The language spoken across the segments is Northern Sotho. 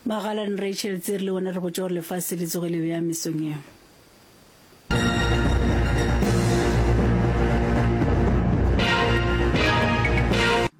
Magalan Rachel tse re le bona re botša gore lefase le tsoge le bea mesong eo.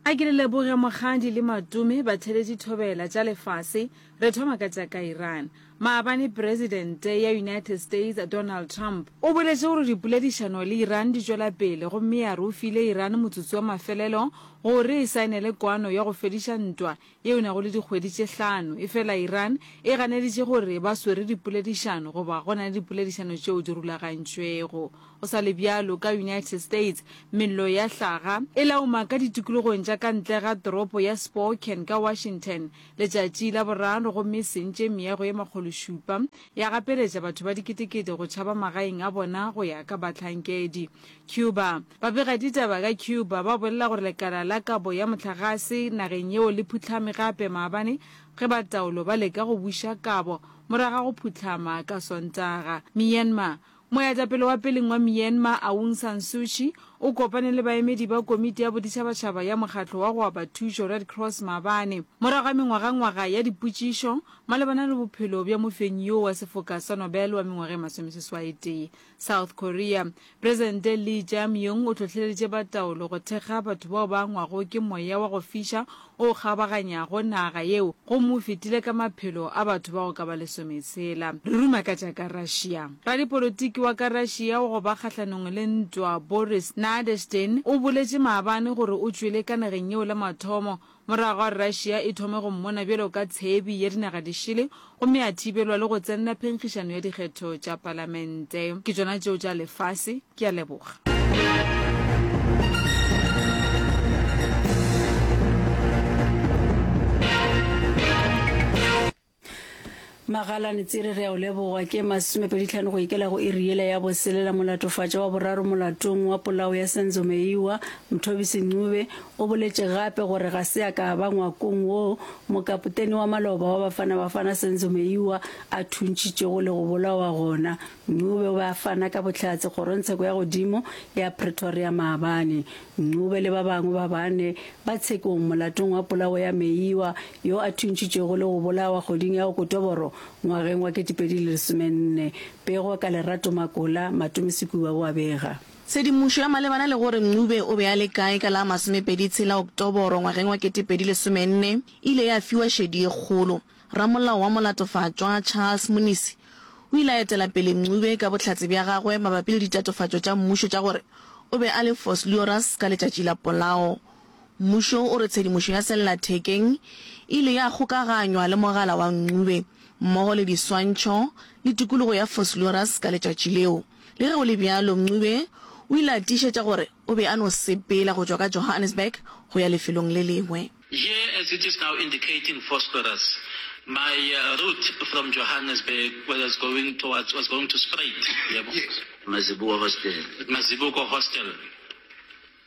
A ke le leboge mogadi le matome batheletši thobela tša lefase re thoma ka tša ka Iran Maabane Presidente ya United States Donald Trump o boletše gore dipoledišano le Iran di tšwela pele gomme a re o file Iran motsotso wa mafelelo gore e saenele kwano ya go fediša ntwa yeo nago le dikgwedi tše hlano. Efela Iran e ganeditše gore ba swere dipoledišano goba go na le dipoledišano tšeo di rulagantšwego. Go sa le bjalo, ka United States mello ya hlaga e lauma ka ditikologong tša ka ntle ga toropo ya Spokane ka Washington, Letšatši la boraro gomme e sentše meago ye makgološupa, ya gapeletša batho ba diketekete go tšhaba magaeng a bona go ya ka bahlankedi. Cuba. Babegaditaba ka Cuba ba bolela gore lekala la kabo ya mohlagase nageng yeo le phuhlame gape maabane ge ba taolo ba leka go buša kabo morago ga go phuhlama ka Sontaga. Myanmar. Moetapele wa peleng wa Myanmar Aung San Suu Kyi o kopane le baemedi ba Komiti ya Boditšhabatšhaba ya Mokgatlo wa go Aba Thušo, Red Cross, maabane, morago ga mengwagangwaga ya dipotšišo malebana le bophelo bja mofenyi yoo wa sefoka sa Nobel wa mengwaga e masomeseswaetee. South Korea. Presidente Lee Jae-myung o hlohleleditše ba taolo go thekga batho bao ba angwago ke moya wa go fiša o kgabaganyago naga yeo gomme o fetile ka maphelo a batho ba go ka ba lesometshela. Re ruma ka tša ka Russia. Radipolotiki wa ka Russia wa go ba kgahlanong le ntwa Boris Nadezhdin o boletše maabane gore o tšwele ka nageng yeo la mathomo morago ga gore Russia e thome go mmona bjalo ka tshebi ya dinaga di šele gomme a thibelwa le go tsenela phenkgišano ya dikgetho tša palamente. Ke tšona tšeo tša lefase. Ke a leboga. Magalane Tsere re a o leboga ke masomepeditlhano go ikela go iri yela ya boselela molatofatša wa boraro molatong wa polao ya Senzo Meyiwa Mthobisi Ncube O boletše gape gore ga se a ka a ba ngwakong wo mokapotene wa maloba wa Bafana Bafana Senzo Meyiwa a thuntšitšego le go bolawa gona Ncube o be a fana ka bohlatse kgorongtsheko ya godimo ya Pretoria maabane. Ncube le ba bangwe ba bane ba tshekong molatong wa polao ya Meyiwa yo a thuntšitšwego le go bolawa kgweding ya Okotoboro ngwageng wa 2014. Pego ka Lerato Makola, Matome Sekuba o a bega. Tshedimošo ya malebana le gore Ncube o be a le kae ka la masomepedi tshela Oktoboro ngwageng wa ketepedi lesomenne e ile ya fiwa šedi e kgolo. Ramolao wa Molatofatšwa, Charles Munisi, o ile a etela pele Ncube ka bohlatse bja gagwe mabapi le ditatofatšo tša mmušo tša gore o be a le Vosluoras ka letšatši la polao. Mmušo o re tshedimošo ya sellathekeng e ile ya kgokaganywa le mogala wa Ncube mmogo le diswantšho le tikologo ya Vosluoras ka letšatši leo. Le ge go le bjalo, Ncube o ile a tiišetša gore o be a no sepela go tšwa ka Johannesburg go ya lefelong le lengwe. Here as it is now indicating Vosloorus, my route from Johannesburg was going towards, was going to Spruit, yebo. Mazibuko Hostel. Mazibuko Hostel.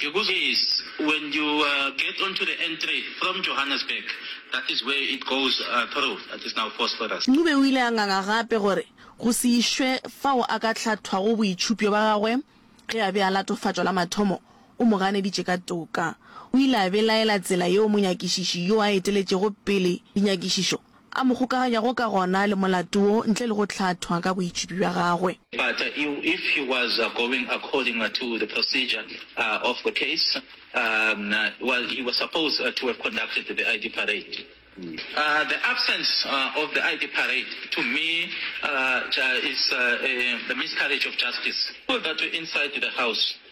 The good thing is when you get onto the N3 from Johannesburg, that is where it goes through, that is now Phosphorus. Ncube o ile a nganga gape gore go se išwe fao a ka hlathwago boitšhupjo ba gagwe ge a be a latofatšwa la mathomo o mo ganeditše ka toka. O ile a belaela tsela yeo monyakišiši yo a eteletšego pele dinyakišišo A mo kgokaganyago ka gona le molato wo ntle le go hlathwa ka boitšhipi bja gagwe. Pata yeo, if he was going according to the procedure of the case, well, he was supposed to have conducted the ID parade. The absence of the ID parade, to me, is a miscarriage of justice. People that were inside the house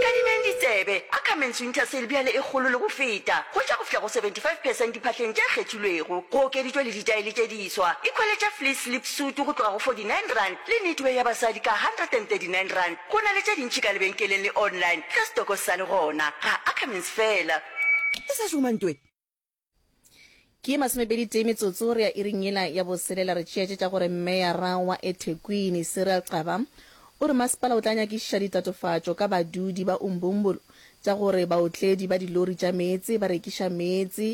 Nkadimeng ditsebe, Ackermans Winter Sale bjale e kgolo le go feta, go tša go fihla go 75 percent diphahleng tše kgethilwego. Go okeditšwe le ditaele tše diswa, ikhwele tša fleece slip suit go tloga go 49 rand le knitwear ya basadi ka 139 rand. Go na le tše dintši ka lebenkeleng le online ka stoko sa le gona, ga Ackermans fela. E sa šoma ntwe. Ke masomepedi tee metsotso re ya iring yela ya boselela re tšeetše tša gore Meyara wa eThekwini, Cyril Xaba, o re masepala o tla nyakišiša ditatofatšo ka badudi ba Umbumbulu tša gore baotledi ba dilori tša meetse ba rekiša meetse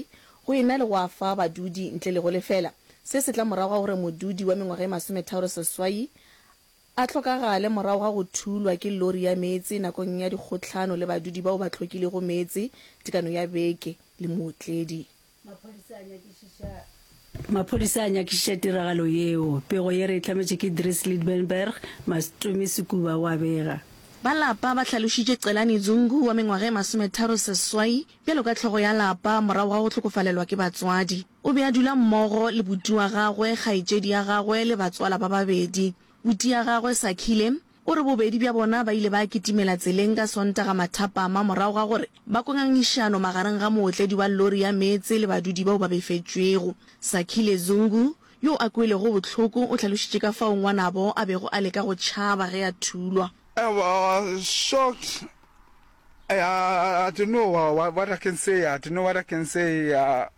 go e na le go a fa badudi ntle le go lefela. Se se tla morago ga gore modudi wa mengwaga e masometharo seswai a hlokagale morago ga go thulwa ke lori ya meetse nakong ya dikgohlano le badudi bao ba tlhokilego meetse tekano ya beke le mootledi. Maphodisa a nyakišiša tiragalo yeo. Pego ye re e hlametše ke Dries Liebenberg, Mastumi Sekuba o a bega. Ba lapa ba hlalošitše Celani Zungu wa mengwaga e masometharo seswai bjalo ka hlogo ya lapa morago ga go hlokofalelwa ke batswadi. O be a dula mmogo le buti wa gagwe, kgaetšedi ya gagwe le batswala ba babedi. Buti ya gagwe, Sakhile, o re bobedi bja bona ba ile ba kitimela tseleng ka Sontaga mathapama morago ga gore ba kwe ngangišano magareng ga mootledi wa lori ya meetse le badudi bao ba befetšwego. Sakhile Zungu, yo a kwelego bohloko, o hlalošitše ka fao ngwanabo a bego a leka go tšhaba ge a thulwa. I was shocked. I, I, I didn't know what, what I can say. I didn't know what I can say. Uh,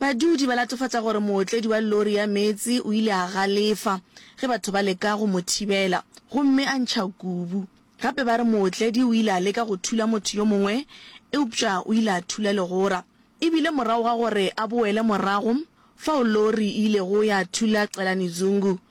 Badudi ba latofatša gore mootledi wa lori ya meetse o ile a galefa ge batho ba leka go mo thibela gomme a ntšha kubu. Gape ba re mootledi o ile a leka go thula motho yo mongwe eupša o ile a thula legora. E bile morago ga gore a boele morago fao lori e ilego ya thula Celani Zungu,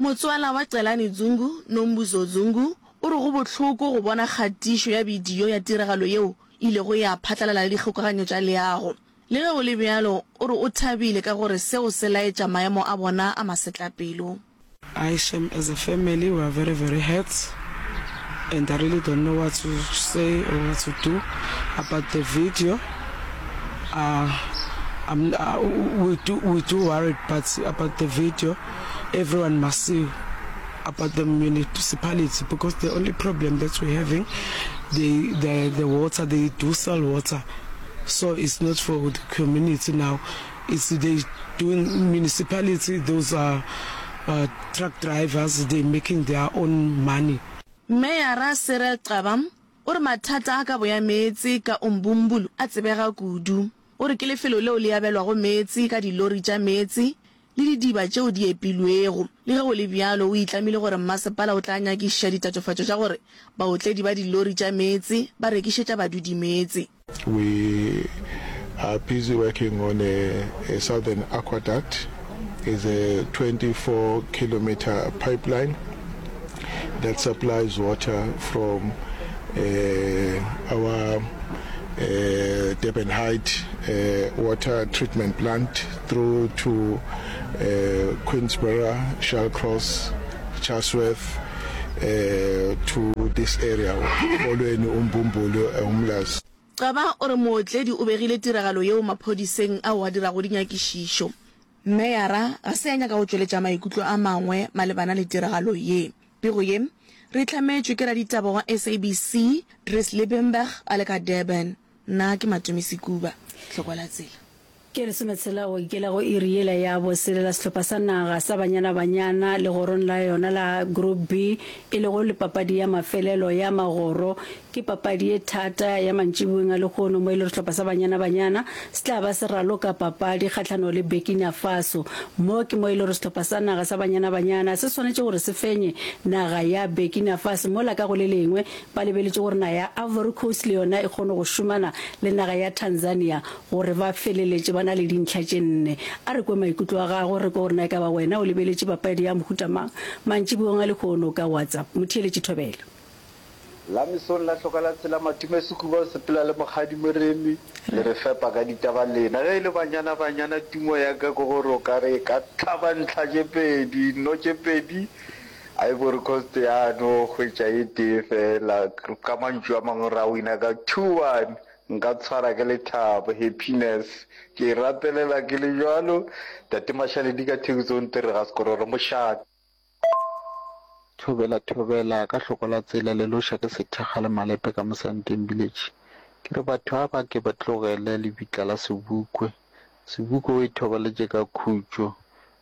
Motswala wa Celani Dzungu, Nombuzo Dzungu, o re go bohloko go bona kgatišo ya bidio ya tiragalo yeo e ilego ya phatlalala le dikgokaganyo tša leago. Le ge go le bjalo, o re o thabile ka gore seo se laetša maemo a bona a masetlapelo. Ai shame as a family we are very very hurt and I really don't know what to say or what to do about the video uh I'm uh we do we do worried but about the video. Everyone must see about the municipality because the only problem that we're having, they, the, the water, they do sell water. So it's not for the community now. It's they doing municipality, those are uh, truck drivers, they making their own money. Meyara Cyril Xaba o re mathata a kabo ya meetse ka Umbumbulu a tsebega kudu. O re ke lefelo leo le abelwago meetse ka dilori tša meetse le didiba tšeo di epilwego. Le ge go le bjalo, o itlamile gore mmasepala o tla nyakišiša ditatofatšo tša gore baotledi ba dilori tša meetse ba rekišetša badudi meetse. We are busy working on a southern aquaduct, is a 24 kilometer pipeline that supplies water from our Durban Height water treatment plant. through to uh, Queensborough, Shallcross, Chatsworth, uh, to this area, Kolweni, Umbumbulu, Umlas. Gcaba o re mootledi o begile tiragalo yeo maphodiseng ao a dirago dinyakišišo. Meyara ga se ya nyaka go tšweletša maikutlo a mangwe malebana le tiragalo ye. Pego ye re e hlametšwe ke raditaba wa SABC, Dries Liebenberg a le ka Durban. Nna ke Matomi Sekuba, Tlhokwa la Tsela. Ke lesometshela go ikela go iri yela ya boselela sehlopha sa naga sa Banyana Banyana legorong la yona la Group B e lego le papadi ya mafelelo ya magoro. Ke papadi ye thata ya mantšiboweng a lehono mo e lego sehlopha sa Banyana Banyana se tla ba se raloka papadi kgahlano le Burkina Faso. Mo ke mo e lego sehlopha sa naga sa Banyana Banyana se swanetše gore se fenye naga ya Burkina Faso mola ka go le lengwe Ba lebeletše gore naga ya Ivory Coast le yona e kgone go šomana le naga ya Tanzania gore ba feleletše ba na le dintlha tše nne. A re kwe maikutlo a gago, re kwe gore na e ka ba wena o lebeletše papadi ya mohuta mang mantšiboeng a lehono ka WhatsApp. Motheeletši Thobela. La mesong la hloka la tshela Matume Sekhuba o sepela le Mokgadi Moremi le re fepa ka ditaba lena ge e le banyana banyana tumo ya ka ke gore o ka re e ka hlaba ntlha tše pedi nno tše pedi Ivory Coast ya no hwetša e tee fela, ka mantšu a mangwe ra wina ka two one, nka tshwara ke lethabo, happiness, ke e rapelela ke le bjalo, Tate Mashaledi ka Thekiso o ntere ga sekororo mošate. Thobela thobela ka hloko la tsela le loša ke sethakga le malepe ka mosanteng village ke re batho a ba ke ba tlogele lebitla la sebukwe sebukwe o e thobaletše ka khutšo.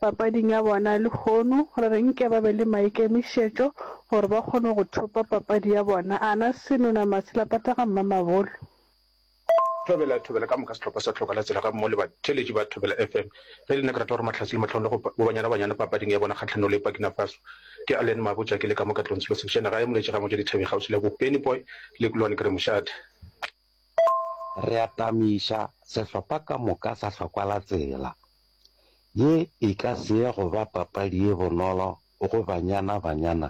papading ya bona lehono gore re nke ba be le maikemišetšo gore ba kgone go thopa papadi ya bona, a na Senona Masilapata ga Mmamabolo. Thobela, Thobela ka moka sehlopha sa Tlhoka la Tsela gammogo le batheeletši ba Thobela FM. Ge e le nna ke rata gore Mahlatse le Matlhong le go bo Banyana Banyana papading ya bona kgahlanong le Burkina Faso. Ke Allen Mabotja ke le ka mo Katlong Selo Sekšena gae Moletše ga Motšwa Dithabeng kgauswi le Bopenipoy le Kulwane ke re mošate. Re atamiša sehlopha ka moka sa hlokwa la tsela. Ye e ka se ye go ba papadi ye bonolo go banyana banyana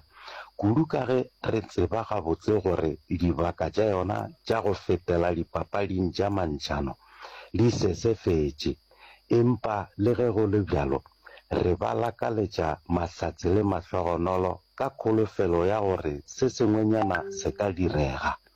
kudu ka ge re tseba gabotse gore dibaka tša yona tša go fetela dipapading tša mantšhano di sesefetše. Empa le ge go le bjalo, re ba lakaletša mahlatse le mahlogonolo ka kholofelo ya gore se sengwenyana se ka direga.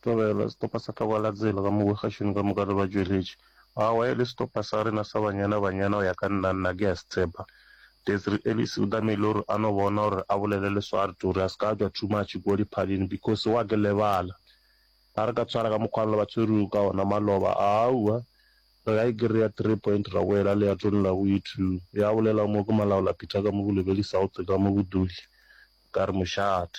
Tlogela setopa sa Tlogalatsela ka mo bogašing ka moka re ba tšweletše. Aowa, e le setopa sa rena sa banyana, banyana go ya ka nna, nna ke a se tshepa. Desri Ellis o tamile o re a no bona o re a bolele le Swart o re a se ka a tšwa too much kua diphaleng because wa ke lebala. Ga re ka tshwara ka mokgwana le ba tshwerego ka ona maloba, aowa, re ka e kry-a three point ra boela leatong la go ithu, ya bolela mo ke Malaola Peter ka mo Bolebeli South ka mo Boduli. Ka re mošate.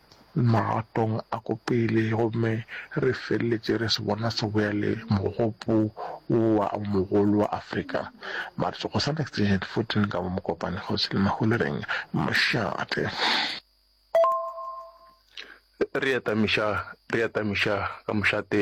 magatong a ko pele gomme re feleletše re se bona se bjale mogopo wo wa o mogolo wa Afrika. March go sa next gen 14 ka mo Mokopane kgosi le Maholereng mošate. Re atamiša re atamiša ka mošate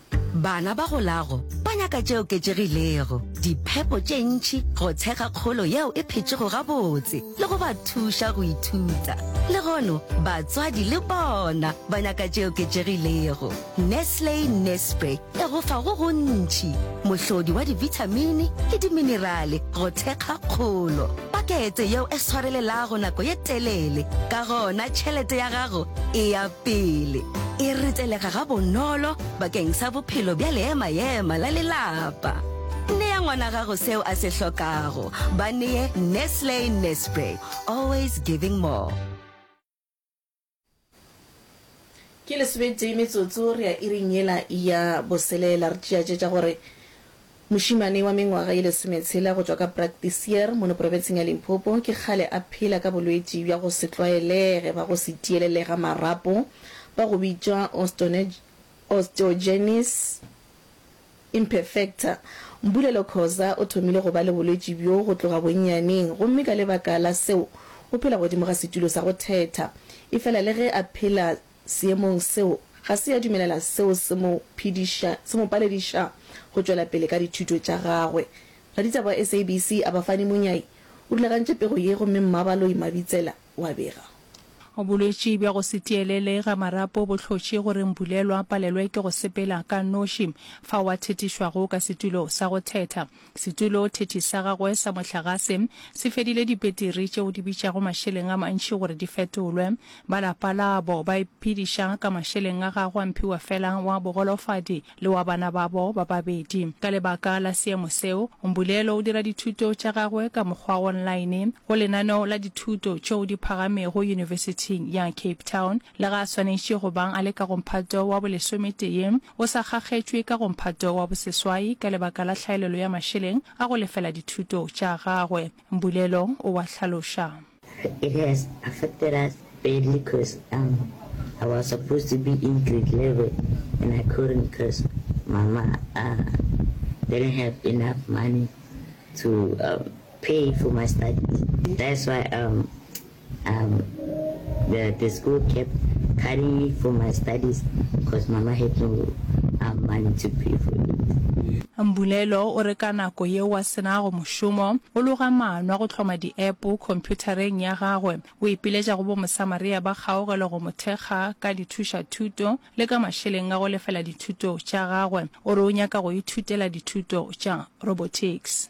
Bana ba golago ba nyaka tše oketšegilego, diphepo tše ntši, go tshega kgolo yeo e phetšego gabotse le go ba thuša go ithuta. Le gono batswadi le bona ba nyaka tše oketšegilego. Nestle Nespre e go fa go gontši, mohlodi wa dibithamini le diminerale go thekga kgolo, pakete yeo e swarelelago nako ye telele, ka gona tšhelete ya gago e ya pele e retelega ga bonolo bakeng sa bophelo bja leema-ema la lelapa. Nea ngwana gago seo a se hlokago. Ba neye Nestle Nespray, always giving more. Ke lesometee metsotso re ya iring yela ya boselela re tšeatše tša gore Mošemane wa mengwaga ye lesometshela go tšwa ka Braktiseer mono profenseng ya Limpopo ke kgale a phela ka bolwetši bja go se tlwaelege ba go se tielele ga marapo ba go bitšwa osteogenesis imperfecta. Mbulelo Khoza o thomile go ba le bolwetši bjo go tloga bonnyaneng gomme ka lebaka la seo o phela godimo ga setulo sa go thetha efela le ge a phela Seemong seo, ga se ya dumelela seo se mo phediša, se mo palediša go tšwela pele ka dithuto tša gagwe. Raditaba wa SABC Abafani Munyai o rulagantše pego ye gomme Mmabaloi Mabitsela o a bega. Bolwetši bja go se tielele ga marapo bo hlotše gore Mbulelwa a palelwe ke go sepela ka noši fao a thetišwago ka setulo sa go thetha. Setuloothethi sa gagwe sa mohlagase se fedile dipetiri tšeo di bitšago mašeleng a mantši gore di fetolwe. Ba lapa labo ba iphediša ka mašeleng a gagwe a mphiwa fela wa bogolofadi le wa bana babo ba babedi. Ka lebaka la seemo seo, Mbulelo o dira dithuto tša gagwe ka mokgwa wa online go lenaneo la dithuto tšeo di phagamego Yunibesithing ya Cape Town. Lega a swanetše go bang a le ka go mphato wa bolesometee, o sa kgakgetšwe ka go mphato wa boseswai ka lebaka la hlaelelo ya mašeleng a go lefela dithuto tša gagwe. Mbulelo o a hlaloša. It has affected us badly cos um I was supposed to be in grade level and I couldn't cos mama uh didn't have enough money to um pay for my studies that's why um Um the the school kept carrying me for my studies cause mama had no um money to pay for it. Mbulelo o re ka nako yeo a se nago mošomo, o loga maano a go hloma diepo khomphutareng ya gagwe. O ipiletša go boMosamaria ba kgaugelo go mo thekga ka dithušathuto le ka mašeleng a go lefela dithuto tša gagwe. O re o nyaka go ithutela dithuto tša robotics.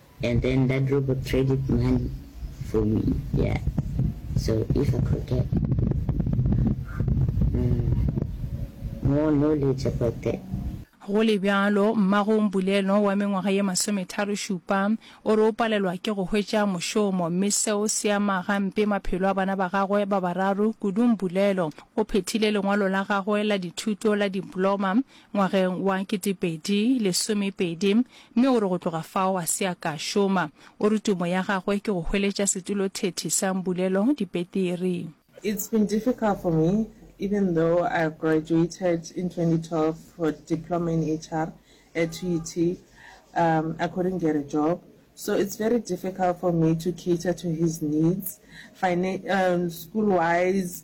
And then that robot traded money for me yeah so if I could get more knowledge about that. Go le bjalo, mmago Mbulelo wa mengwaga ye masometharo šupa o re o palelwa ke go hwetša mošomo mme seo se ama gampe maphelo a bana ba gagwe ba bararo. Kudu Mbulelo o phethile lengwalo la gagwe la dithuto la diploma ngwageng wa kete pedi lesome pedi, mme o re go tloga fao a se a ka šoma. O re tumo ya gagwe ke go hweletša setulothethi sa Mbulelo dipetiri. It's been difficult for me even though I graduated in 2012 for Diploma in HR at UT, um I couldn't get a job so it's very difficult for me to cater to his needs, fina, um school wise,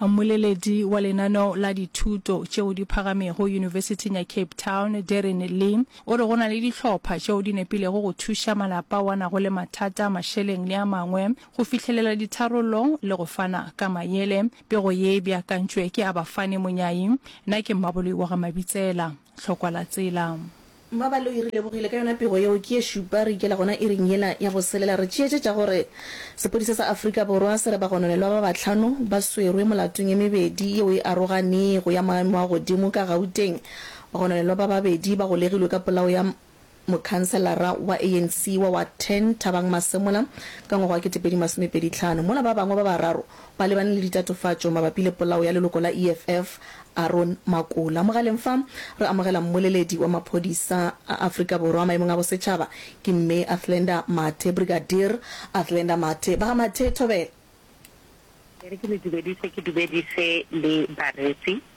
Mmoleledi wa lenaneo la dithuto tšeo di phagamego Yunibesiting ya Cape Town, Darren Lee, o re go na le dihlopha tšeo di nepilego go thuša malapa ao a nago le mathata a mašeleng le a mangwe go fihlelela ditharollo le go fana ka mayele. Pego ye e beakantšwe ke Abafani Monyai. Na ke Mmaboloi wa ga Mabitsela. hlokwa la tsela. Mmabali o e re lebogile ka yona pego yeo ke ye šupa re ikela gona iring yela ya go selela re tšeetšetša gore sepodisa sa Afrika Borwa se re bagononelwa ba bahlano ba swerwe molatong e mebedi yeo e aroganego ya maemo a godimo ka Gauteng. Bagononelwa ba babedi ba golegilwe ka polao ya Mokhanselara wa ANC wa Ward 10, Thabang Masemola, ka ngwaga wa 2025, mola ba bangwe ba bararo ba lebane le ditatofatšo mabapi le polao ya leloko la EFF, Aaron Makola. Mogaleng fa re amogela mmoleledi wa maphodisa a Afrika Borwa maemong a bosetšhaba, ke Mme Athlenda Mathe, Brigadier Athlenda Mathe. Ba ga Mathe, thobela. Ke re ke le dumedise, ke dumedise le bareetsi.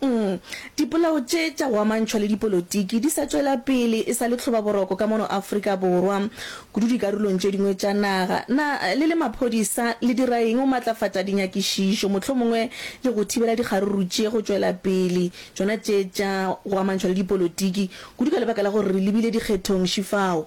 Uhm. Dipolao tše tša go amantšhwa le dipolotiki di sa tšwela pele e sa le tlhobaboroko ka mono Afrika Borwa, kudu dikarolong tše dingwe tša naga. Na le le maphodisa le dira eng go matlafatša dinyakišišo mohlomongwe le go thibela dikgaruru tše go tšwela pele, tšona tše tša go amantšhwa le dipolotiki, kudu ka lebaka la gore re lebile dikgethong šifao?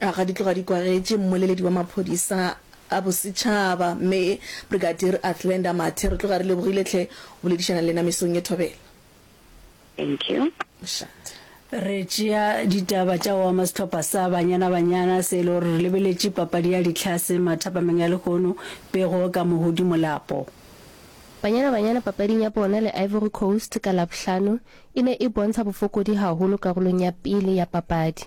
A ga di tloga di kwagetše mmoleledi wa maphodisa a bosetšhaba, Mme Brigadier Athlenda Mathe, re tloga re lebogile tlhe go boledišana le lena mesong ye thobela. Thank you. Mošate. Re tšea ditaba tša go ama sehlopha sa Banyana Banyana se e le gore re lebeletše papadi ya Ditlhase mathapameng a lehono, pego ka Mohudi Molapo. Banyana Banyana papading ya bona le Ivory Coast ka Labohlano e ne e bontsha bofokodi haholo karolong ya pele ya papadi.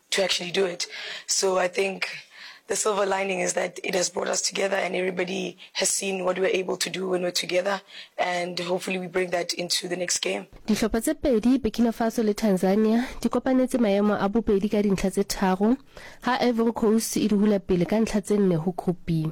to actually do it so I think the silver lining is that it has brought us together and everybody has seen what we're able to do when we're together and hopefully we bring that into the next game. Dihlopha tse pedi, Burkina Faso le Tanzania, di kopanetse maemo a bobedi ka dintlha tse tharo, ha Ivory Coast e di hula pele ka ntlha tse nne ho Group B.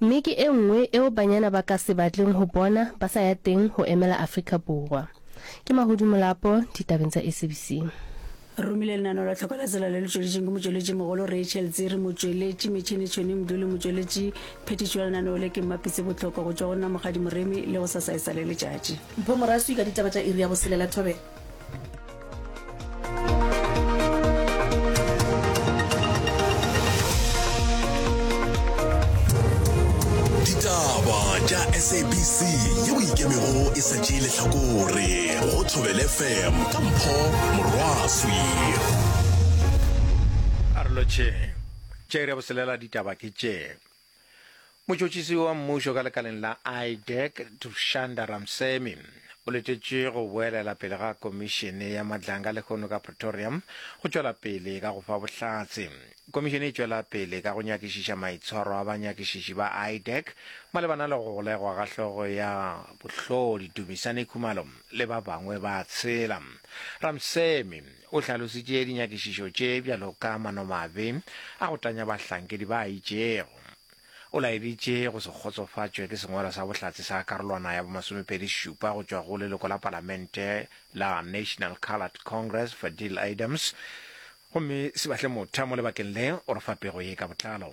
Mme ke e nngwe eo banyana ba ka se batleng ho bona ba sa ya teng ho emela Afrika Borwa. Ke Mahodu Molapo, ditabeng tsa SABC. Re romile lenaneo la tlhoko la tsela le le tšweletšeng ke motšweletši mogolo Rachel Dziri, motšweletši metšhini Tšhoni Mduli, motšweletši phethiši wa lenaneo le ke Mmapitse Botloko, go tšwa go nna Mokgadi Moremi le go sasa e sa le letšatši. Mpho Moraswi ka ditaba tša iri ya boselela. Thobela. sabc ye o ikemego e sa tšee lehlakore go thobele fm ka mpho morwaswi a re lotšheng tše re boselela ditaba ke tše Motšhotšhisi wa mmušo ka lekaleng la IDEC, Dushanda Ramsemi, o letetše go boelela pele ga komišene ya matlanga lehono ka Pretoria go tšwela pele ka go fa bohlatse. Komišene e tšwela pele ka go nyakišiša maitshwaro a banyakišiši ba IDEC malebana le go golegwa ga hlogo ya bohlodi Dumisani Khumalo le ba bangwe ba tshela. Ramsemi O hlalositše dinyakišišo tše bjalo ka manomabe a go tanya bahlankedi ba a itšego. O laeditše go se kgotsofatšwe ke sengwalo sa bohlatse sa karolwana ya bomasomepedi šupa go tšwa go leloko la palamente la National Coloured Congress Fadil Adams gomme se batle motha mo lebakeng le o re fa pego ye ka botlalo.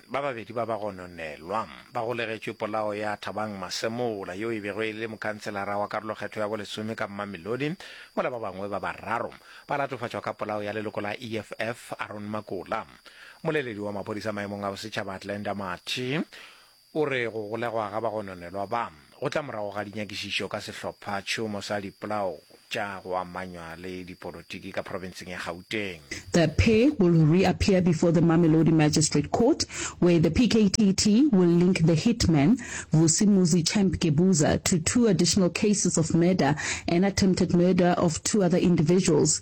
Ba babedi ba ba gononelwa ba golegetšwe polao ya Thabang Masemola yo e bego e le mokhanselara wa karolokgetho ya bolesome ka Mamelodi, mola ba bangwe ba bararo ba latofatšwa ka polao ya leloko la EFF Aaron Makola. Mmoleledi wa maphodisa maemong a bosetšhaba Atlander Mathe o re go golegwa ga bagononelwa ba, Go tla morago ga dinyakišišo ka sehlophatšhomo sa dipolao tša go amanywa le dipolotiki ka profenseng ya Gauteng, The pair will reappear before the Mamelodi Magistrate Court where the PKTT will link the hitman, Vusi Muzi Champ Gebuza, to two additional cases of murder and attempted murder of two other individuals.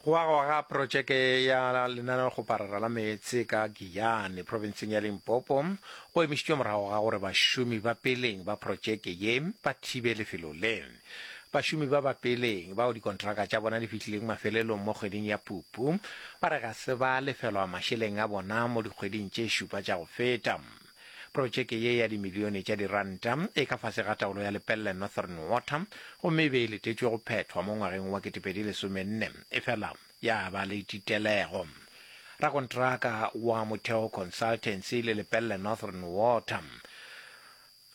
Go agwa ga projeke ya lenaneo go parara la meetse ka Giyane, profenseng ya Limpopo, go emišitšwe morago ga gore bašomi ba peleng ba projeke ye ba thibe lefelo le. Bašomi ba ba peleng, bao dikontraka tša bona di fihlileng mafelelong mo kgweding ya Phupu, ba re ga se ba lefelwa mašeleng a bona mo dikgweding tše šupa tša go feta. Protšeke ye ya dimilione tša diranta e ka fase ga taolo ya Lepelle Northern Water gomme e be e letetšwe go phethwa mo ngwageng wa 2014 efela ya ba le titelego. Rakontraka wa Motheo Consultancy le Lepelle Northern Water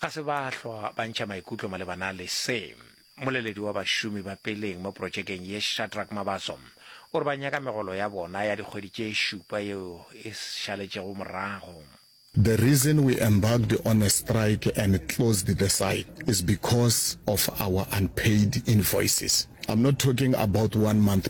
ga se ba hlwa ba ntšha maikutlo malebana le se. Mmoleledi wa bašomi ba peleng mo protšekeng ye Shadrack Mabaso o re ba nyaka megolo ya bona ya dikgwedi tše šupa yeo e šaletšego morago. The reason we embarked on a strike and closed the site is because of our unpaid invoices. I'm not talking about one month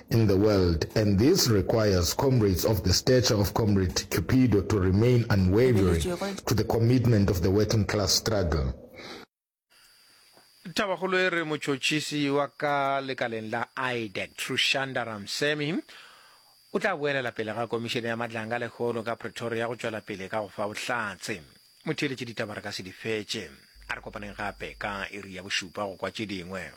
in the world and this requires comrades of the stature of Comrade Cupido to remain unwavering to the commitment of the working class struggle. Thabakgolo e re motšhotšhisi wa ka lekaleng la IDEC, Trushanda Ramsemi, o tla boelela pele ga komišene ya matlanga lekgolo ka Pretoria go tšwela pele ka go fa bohlatse. Motheeletše ditaba re ka se di fetše. A re kopaneng gape ka iri ya bošupa go kwa tše dingwe.